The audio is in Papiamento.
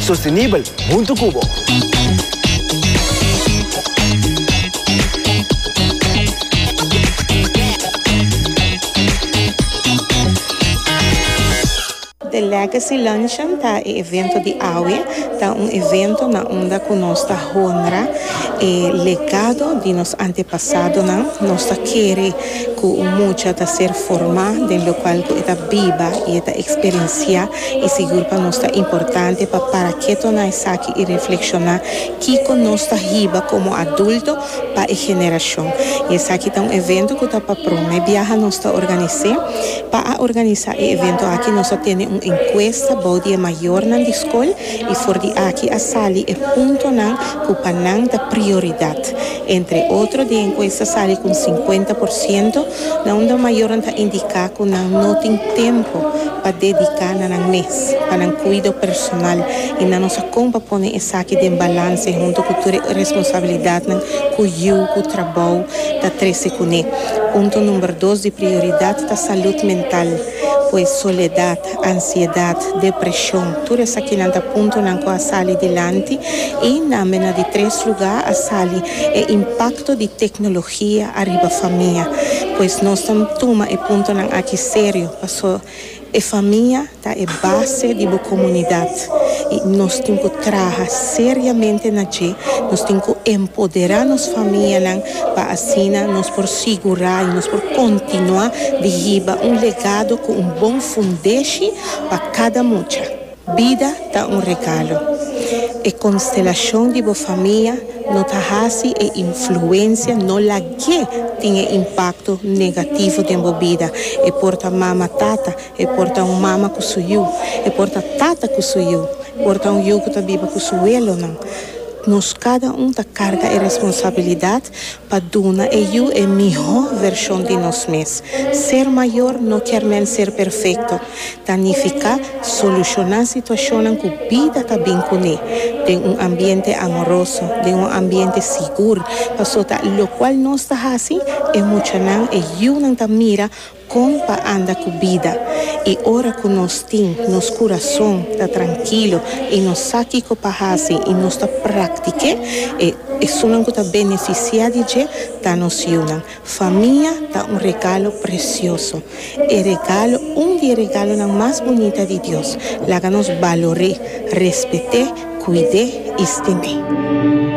Sostenibel hunto cu bo. The Legacy Luncheon ta e evento di awe. Ta un evento na unda cu nos ta honra e legado di nos antepasadonan. Nos ta kere cu un mucha ta ser forma den locual cu e ta biba y e ta experiencia I sigur pa nos ta importante pa para keto na esaki i reflekshoná kiko nos ta hiba komo adulto pa e generashon. I esaki ta un evento ku ta pa promé biaha nos ta organis'é. Pa a organisá e evento aki nos a tene un enkuesta bou di e mayornan di skol i for di aki a sali e puntonan ku pa nan ta prioridat. Entre otro, di enkuesta sali ku un sinkuenta por siento na un dor mayornan ta indiká ku nan no tin tempu pa dediká na nan mes pa nan kuido personal i nan no sa kon pa pone esaki den balanse huntu ku tur e responsabilidatnan ku yu ku trabou ta trese kuné. Punto number dos di prioridat ta salud mental, pues soledat ansiedat, depreshon, tur esakinan ta puntonan ku a sali dilanti i na mena di tres lugá a sali e impakto di teknologia ariba famia. Pues nos ta tuma e puntonan aki serio pasobra e famia ta e base di bo komunidat. y nos tin cu traha seriamente na dje, nos tin cu empodera nos famianan pa asina nos por sigura y nos por continua di hiba un legado cu un bon fundeshi pa cada mucha. Bida ta un regalo. E constelacion di bo famia no ta haci e influencia no lagu'e tin e impacto negativo den bo bida. E por ta mama, tata. E por ta un mama ku su yu. E por ta tata ku su yu. E por ta un yu ku ta biba ku su welonan. Nos kada un ta karga e responsabilidat pa duna e yu e mihó vershon di nos mes. Ser mayor no kier men ser perfekto. Ta nifiká solushoná situashonnan ku bida ta bin kuné den un ambiente amoroso, den un ambiente sigur. Pasobra lokual nos ta hasi, e muchanan, e yunan ta mira. Kon pa anda ku bida i ora ku nos tin nos kurason ta trankilo i nos sa kiko pa hasi i nos ta praktik'é, e esunnan ku ta benefisiá di dje ta nos yunan. Famia ta un regalo presioso. E regalo, un di e regalonan mas bunita di Dios. Laga nos balor'é, respet'é, kuid'é i stim'é.